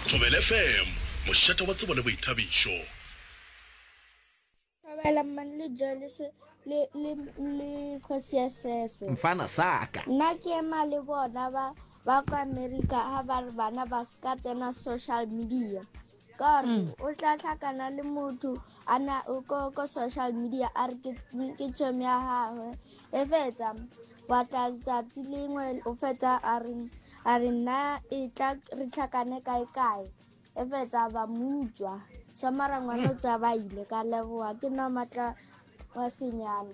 Thobela FM, mošate wa tsebo le boithabišo. Thobela mmane le Joelese le, le, le kgosi ya sese. Mfana saka. Nna ke ema le bona ba ba kwa America ha ba re bana ba ska tsena social media. ka re mm. o tla tlhakana le motho a na ko ko social media a re ke chom ya gagwe e fetsa wa tla tsatsi lengwe o fetsa a re a re nna e tla re tlhakane kae kae e fetsa ba mutswa sa marangwana o tsa ba ile ka leboa ke nna matla wa senyana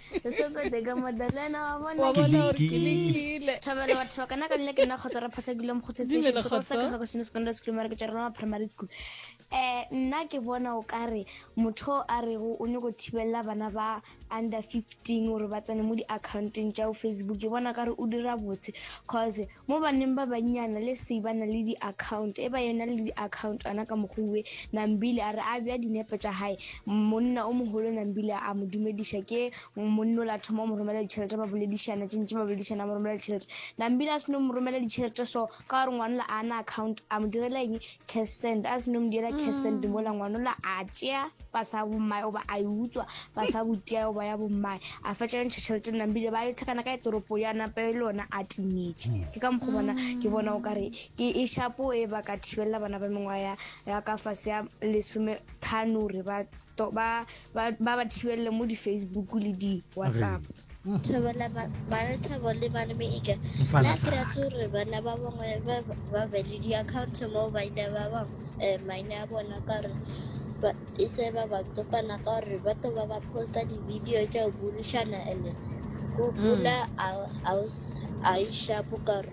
Sesokode ka Madalena wa bona. Wa bona gore ke lekile. Thobela batho ba kana ka nne ke nna kgotsa re phatla dilo mokgotse station se go sa ka go seno secondary school mara ke tšwa rona primary school eh nna ke bona o kare motho a re go o nyoko thibella bana ba under 15 gore ba tsene mo di accounteng tša o facebook ke bona kare o dira botse cause Mo baneng ba bannyana le se ba na le diakhaunt, e ba yona le diakhauntana ka mokgwi we, Nambili a re a bea dinepe tša hae, monna o mogolo Nambili a mo dumediša. Ke monna o la thoma o mo romela ditšhelete, ba boledišana tše ntši, ba boledišana a mo romela ditšhelete. Nambili a se no mo romela ditšhelete so, ka gore ngwanola a na akhaunt, a mo direla eng? Kersent, a se no mo diela Kersent mm. mola ngwanola a tšea pasa ya bommae goba a e utswa pasa ya botia goba ya bommae a fetša yo ntšha tšhelete nnang bile ba yo tlhakana ka etoropo ya napa e le yona a timetše mm. ke ka mokgwa bona ke mm. bona o ka re ke e shapo e ba ka thibelela bana ba mengwaga ya ka fase ya lesome thano gore ba to ba ba ba thibelele mo di-facebook le di-whatsapp thobela bathabo le malemeke la ke ratse gore bana ba bangwe ba be le di-account mo baina ba bangwe um eh, maina a bona ka gore e se ba ba topana ka gore ba to ba ba posta di-video tša go bulišana and go mm. bula a e shapo ka gore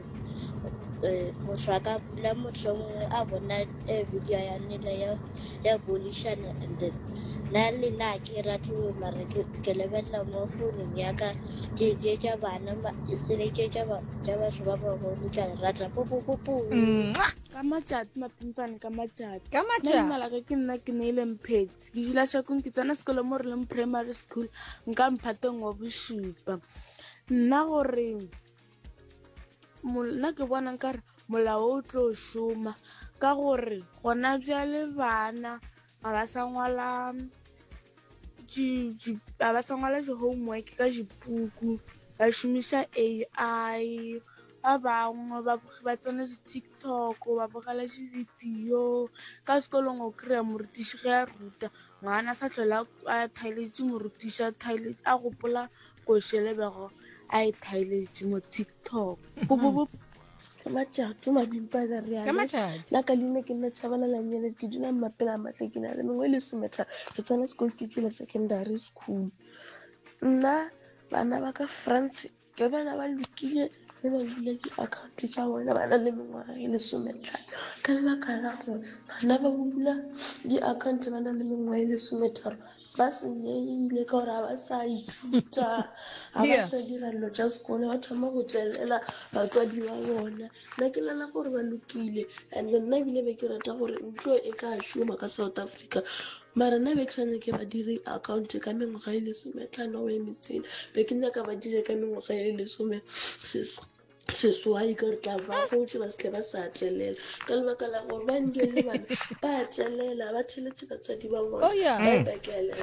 motho a ka bula motho mongwe a bona eh, video ya nela ya ya bolishana and then na le na ke rate mara ke lebelela mo founung ya ka ke ke ka bana sele ke ka ba ka batho ba ba go tla rata po po po po ka matšati mapimpane ka matšati ka matšati nna la ke nna ke ne ile mphetsi ke jula shakong ke tsena sekolo mo re leng primary school nka mphateng wa bosupa nna goreng nna ke bona nkare molao o tlo šoma ka gore gona bjale bana ga ba sa ngwala ga ba sa ngwala di-homework ka dipuku ba šomiša A_I ba bangwe ba tsena di-TikTok ba bogela di-video ka sekolong o kry-a morutiši ge a ruta ngwana a sa tlhole a thaletše morutiši a gopola ko šele bego a e thaeletše mo tiktok go bo bo ka matšatši madimpa ka re Ka matšatši. la ka leina ke nna tšhabana la nyele ke dula mmapela a matle ke na le mengwe e le sometha re tsena sekolo ke tswile secondary school nna bana ba ka france ke bana ba lokile ge ba bula di-account tša bona ba na le mengwaga e lesometlhano ka lebaka la gore bana ba bula di-account ba na le mengwaga e lesometharo ba senyegile ka gore ga ba sa ithuta ga ba sa dira dilo tša sekolo ba thoma go tšwelela batswadi ba bona nna ke nana gore ba lokile and nna ebile be ke rata gore ntho e ka šoma ka south africa Mara nna be ke sa nyake ba dire account ka mengwaga e lesome tlano o emetsele be ke nyaka ba dire ka mengwaga e lesome seswai ka gore tla ba gotse ba setle ba sa atelela ka lebaka la gore ba ndio le bana ba atelela ba theletse batswadi ba bona oh, ba e bakelela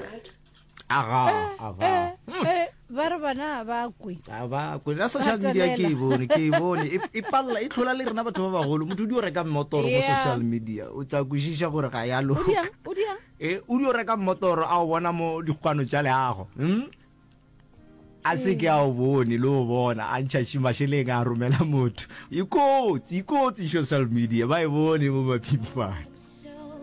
aga aga ba re bana ba kwe a ba kwe la social media ke e bone ke e bone e, e palela e tlhola le rena batho ba bagolo motho o di o reka mmotoro mo social media o tla kwešiša gore ga ya loka e o di o reka mmotoro a o bona mo dikgwano tša leago hmm? a se ke a o bone le o bona a ntšhaši mašeleng a romela motho ikotsi ikotsi social media ba e bone mo maphimfane